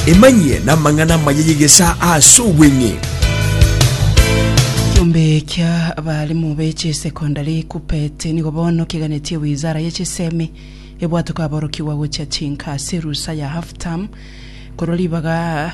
emanyie n'amang'ana amaya y'egesaa ase obweng'e Kiombe kia abalimu be chisecondary kupet nigo bono kiganetie wizara ye chisemi ebwate kwaborokigwa gochia chinka ase erusa ya half term korwa ribaga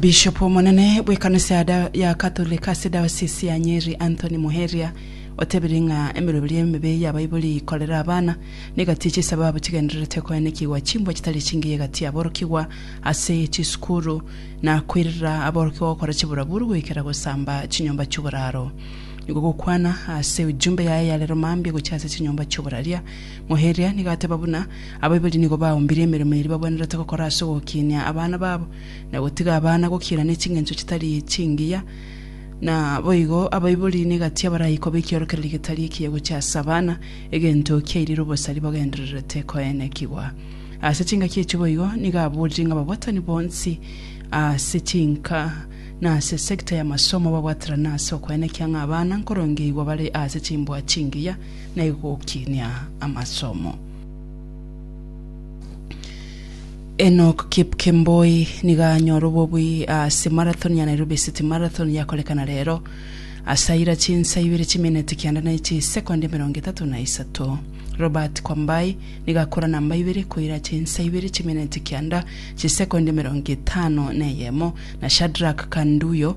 Bishop omonene bw'ekanisa ya Katolek ase diocese ya Nyeri Anthony Muheria otebirie ng'a emeroberi emebe y'abaibori ikorera abana negatia chisabo abo chigendererete koenekigwa chimbwa chitari chingiya egati aborokigwa ase chisukuru na koirera aborokigwa gokora chiburaburu goikera gosamba chinyomba chi'oboraro. Nigo gokwana ase ujumbe yaye yarero mambia gochia ase chinyomba chi'oboraria Ngoeria, nigo ateba buna abaibori nigo baumbirie emeremo eria babwenerete gokora ase ogokinia abana babo, na gotiga abana gokiira ne ching'encho chitari chingiya. Naboigo abaibori negati abaraikoba ekiorokererio getari ekiya gochia ase abana, egento kiairire obosari bagendererete koenekigwa. Ase chingaki echi boigo nigo aborire ng'a ababwatani bonsi ase chinka na ase sector y'amasomo babwaterane ase okoenekia ng'a abana nkorongeigwa bare ase chimbua chingiya, na igokinia amasomo. Enock Kipkemboi nigo anyora obobui ase marathon ya Nairobi City Marathon yakorekana rero. Asaira chinsa ibere chimineti kianda na chisekondi emerongo etato na isato. Robert Kwambai nigo akora namba ibere koira chinsa ibere chimineti kianda chisekondi emerongo etano na eyemo na Shadrack Kanduyo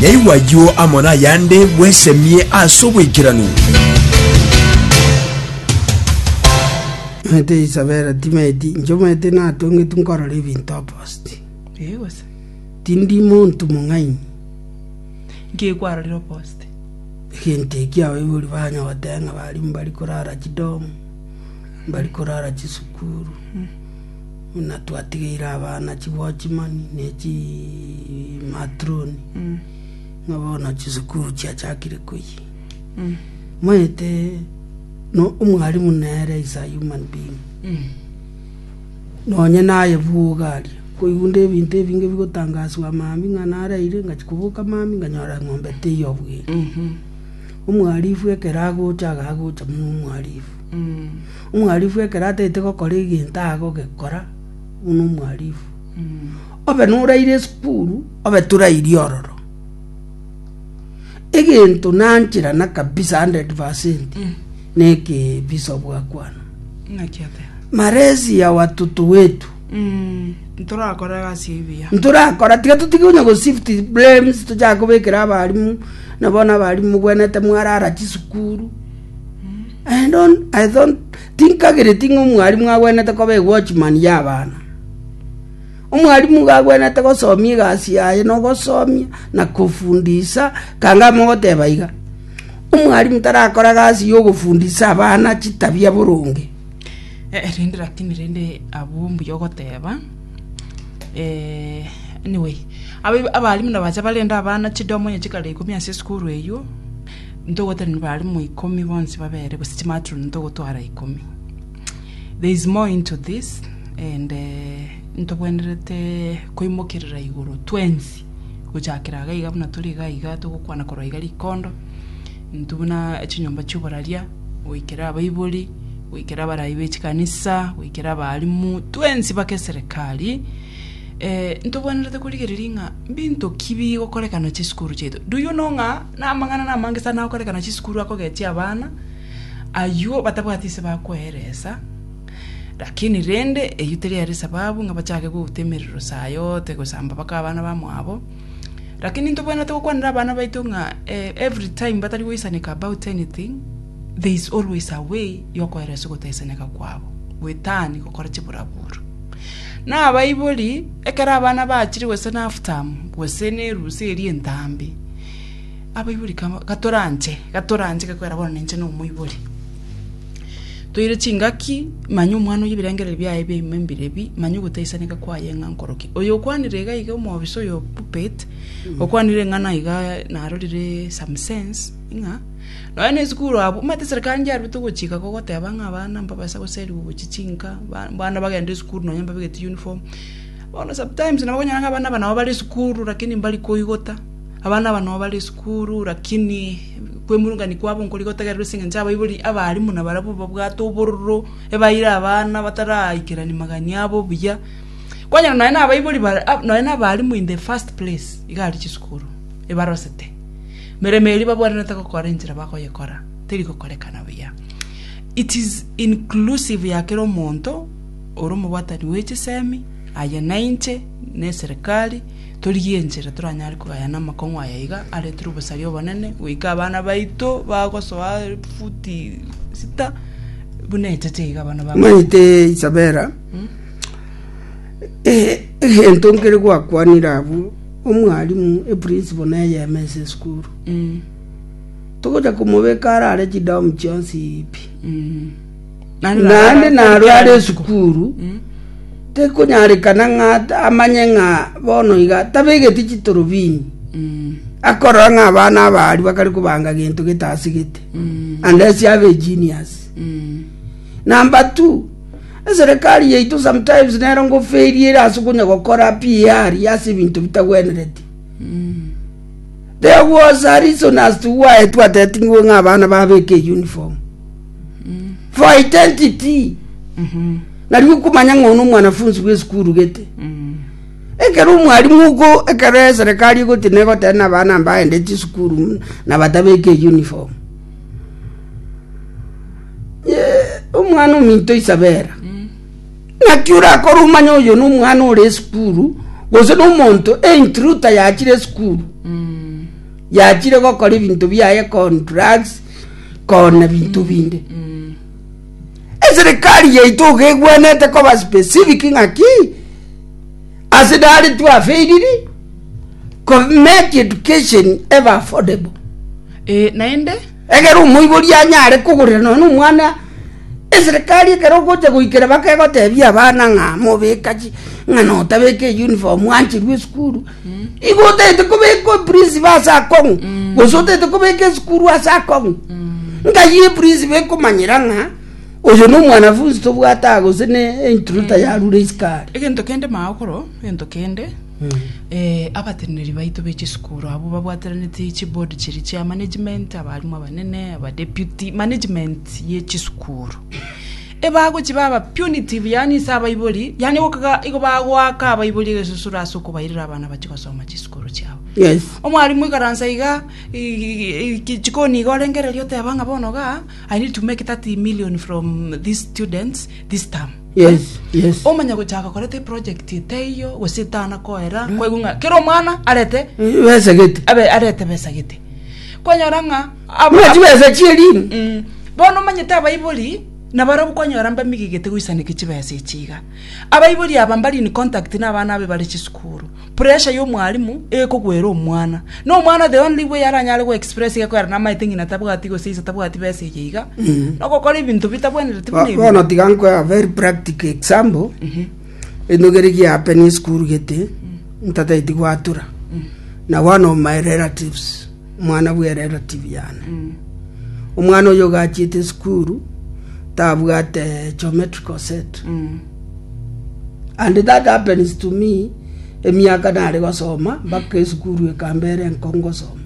Nyaigwe ayio amo nayande bwesemie ase oboikeranu. Omanyete Isabela timeti inche omanyete natongetu nkorora ebinto oposti ee gose tindi monto mong'aini nkekwarorire oposti egento eki abaibori banya goteba ng'a bari mbari korara chidomu mbari korara chisukuru mm. buna twatigeire abana chiwatchman ne chimatron ng'a bono chisukuru chiachakire koyia maete no omwalimu nere is a human being nonye naye bwoga aria koigunda ebinto ebinge bigotangaswa mambia ng'a naraire ngachia koboka mambia nganyora eng'ombe teiyo bwere omwarifu ekero agocha iga agocha buna omwarifu Omwarifu ekero ataete gokora egento agogekora buna omwarifu. Obe noraire esukuru, obe torairi ororo. Egento nancherana kabisa hundred percent, na ekebiso bwakwana. Malezi ya watoto wetu. Ntorakora egasi ebuya. Ntorakora tiga totige onye go shift blames tochake kobekera abarimu, na bono abarimu mobwenerete mwarara chisukuru. Tinkagereti ng'a omwarimu agwenerete koba egwochimani y'abana. Omwarimu igo agwenerete gosomia egasi yaye na ogosomia na kofundisa. Ekanga amo ogoteba iga, omwarimu tarakora egasi ya ogofundisa abana chitabia boronge. Rende rakini rende abwo mbuya ogoteba anyway, abarimu nabacha barende abana chidomo onye chikare ikomi ase esukuru eywo. Ntogotenena barimo ikomi bonsi babere gose chimatron ntogotwara ikomi. There is more into this and uh, ntobwenerete koimokerera igoro twensi gochakera iga iga buna turi iga iga togokwana korwa iga rikondo ntu buna chinyomba chioboraria goikera abaibori goikera abarayi bechikanisa goikera abarimu twensi bake serikali eh, ntobwenerete korigereria ng'a binto ki bigokorekana chisukuru chiaito do you know ng'a Namang'ana namange sana agokorekana chisukuru akogetia abana, ayuo batabwati ise bakoeresa, lakini rende eyio teri ere esababu ng'a bachake gouta emerero saa yote gosamba mpaka abana bamwabo. Lakini ntobwenerete gokwanera abana baito ng'a eh, every time batari goisaneka about anything, there is always a way yokoeresa ogotaisaneka kwabo, goetani gokora chiburaburo. Nabaibori, ekero abana bachire gose naftamu, gose nerusia eria entambe, abaibori kaba gatoranche, gatoranche gekoera bono ninche nomoibori. Toire chingaki, manya omwana oyio ebirengereri biaye ebia ime mbire bi, manya ogotaisaneka kwaye ng'a nkoroki. Oyo okwanire iga iga omwofisa oyo puppet, okwanire ng'a naiga narorire some sense, ng'a. Nonya nesukuru abwo, omanyete esereka yane yarwete ogochika gogoteba ng'a abana mbabaisa goserigwa ogochia chinka, ba abana bagende esukuru nonya mbabegeti uniform. Bono sometimes nabo okonyora ng'a abana aba nabo bare esukuru lakini mbari koigota, abana aba nabo bare esukuru lakini kwemurungania kwabo nkorigotegererwa ase eng'encho abaibori abaarimwa nabarabwo babwate obororo, ebaire abana bataraikerani magani abo buya. Kwanyora nonya na abaibori bare ab nonya na abaarimwa in the first place iga aria chisukuru, ebarosete. Emeremo eria babwenerete gokora enchera bakoyekora teri gokorekana buya. It is inclusive ya kera omonto ore omobwatani bwe chisemi aye na inche na eserekari torigie enchera toranyare kogayana amakong'u aya iga aretire obosaria obonene goika abana baito bagosoa futi sita buna echacha iga abana babo. Omanyete Isabela, egento nkere gwakwanire abwo Omwalimu, eprinciple neyemo ense esukuru. Togocha komobeka arare chidamu chionsi pi. Naende narwe are esukuru, tekonyarekana ng'a at- amanye ng'a bono iga tabegeti chitorobini. Akorora ng'a abana abaria bakare kobanga gento getasigete. Unless abe genius. Number two, Eserekari yaito sometimes nero ngofaili ere ase konya gokora PR ase ebinto bitagwenereti. There was a reason as to why twateting'we ng'a abana babeke uniform. For identity. Nari okomanya ng'a ono omwanafunzi bw'esukuru gete. Ekero omwalimu oko ekero eserekari egoti negotena abana mbaende chisukuru na batabeke uniform. omwana ominto Isabela, naki orakore omanye oyo nomwana ore esukuru, gose nomonto eintruta yachire esukuru, yachire gokora ebinto biaye con drugs, con ebinto binde. Eserikari yaito iga egwenerete koba specific ng'aki, ase nare twafeiriri, ko make education ebe affordable. Eh, naende. Ekero omoiboria anyare kogorera nonya nomwana eserekari ekero ogocha goikera bakegotebia abana ng'a mobeka chi ng'a notabeka eyunifomu ancherwa esukuru, igo otagete kobeka oprisibo ase akong'u gose otagete kobeka esukuru ase akong'u. Nkai eprisibo ekomanyera ng'a oyo na omwanafunzi tobwate aa gose ne entruta yarure isiko are. Egento kende maakoro, egento kende. Abateneneri baito be chisukuru abwo babwataraneti chiboard chiria chia management, abalimu abanene, abadeputy, management ye chisukuru. Ebagochiba aba punitive yaani ase abaibori, yaani gokaga igo bagoaka abaibori egesusuro ase okobairera abana bachie gosoma chisukuru chiabo. Yes. Omwalimu ikaransa iga chikoni iga orengereria oteba ng'a bono igaa, I need to make 30 million from these students this term. Yes, yes. omanye gochaka koreta eproject etaiyo gose etana koera kwaigwa ng'a kera omwana arete Besa gete. abe arete besa gete kwanyora ng'a abo- Buna chibesa chi'elini. Mm. bono omanyete abaibori nabarabwo kwanyora mbamigigete goisaneka chibesa echi iga abaibori aba mbari in contact na abana abe bare chisukuru Pressure y'omwalimu egokogwera omwana. Na omwana the only way aranyare go express iga koera namaete ng'ina tabwati gose ise tabwati besa eye iga. No gokora ebinto bitabwenereti buna Bo- ebi. bono tiga nkwe a very practical example enogere giapeni esukuru gete ntateti gwatura na one of my relatives Omwana bwe relative yane. Omwana oyo ogachiete esukuru tabwate geometrical set. And that happens to me emiaka nare gosoma mpaka esukuru ekambera enko ngosoma.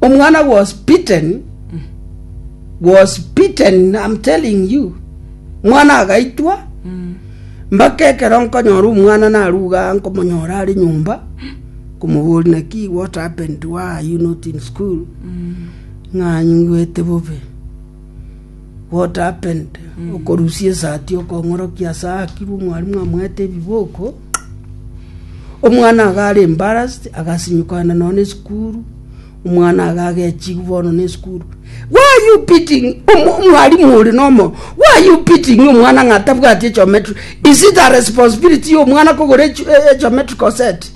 Omwana was beaten was beaten I'm telling you. Omwana agaitwa mpaka ekero nkonyora omwana naruga nkomonyora are nyomba Komobori naki what happened why are you not in school mm. ng'a nyigwete bobe what happened mm. okorusia esati okong'orokia ase akirwe omwarimu amwete ebiboko omwana agare embarrassed agasinyukana nono esukuru omwana agagechigu bono na esukuru why are you beating omwarimu ori nomo why are you beating omwana ng'atabwati echometri is it a responsibility y'omwana kogora echometrical e, e set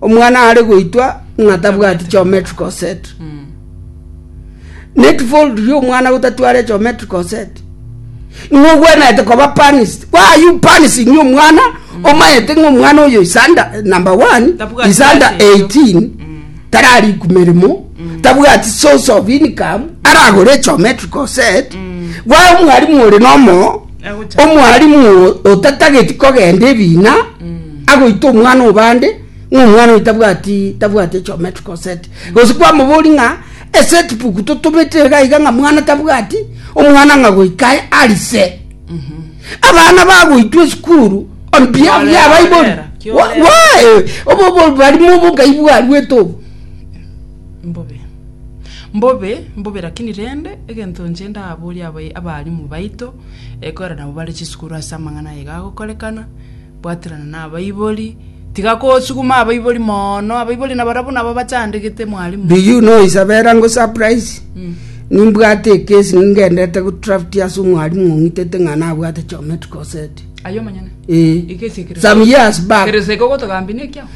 Omwana are goitwa ng'a tabwati geometric set. Net fold ria omwana gotatware geometric set. Ng'a ogwenerete koba punished. Why are you punishing omwana omayete ng'a omwana oyo is under number one Tabwati is under gati eyo. 18 tarariku meremo tabwati source of income aragore geometric set. Why omwalimu ore nomo Omwalimu otatageti kogenda ebiina agoita omwana obande ng'a omwana oyo tabwati tabwati geometrical set gose kwamobori ng'a eset book totomete iga iga ng'a mwana tabwati omwana ng'a goika arise mhm. abana bagoitwa esukuru on behalf ya abaibori obobalimu obo ngai bwarwete obo mbobe. Mbobe, mbobe lakini rende, egento inche ndaboria abayi- abalimu baito, eh, kore nabo bare chisukuru ase amang'ana aye iga agokorekana, bwaterana na abaibori, tiga kosuguma abaibori mono, abaibori nabarabwo nabo abachandegete mwalimu. Do you know Isabella ngo surprise? Nimbwate ekesi ningendete go draft ase omwalimu ong'itete ng'a nabwate geometrical set. Aye omonyene? Ee. Ekesi ekero- Some years back. Kero seke ogotogambia nekiao?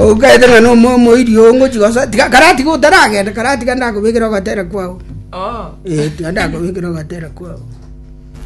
Ogokaete ng'a nomoyo omoiri oo ngochia gosoa, tiga karatiga otaragenda, karatiga ndakobekere ogatera kwao. Ee, tiga ndakobekere ogatera kwao.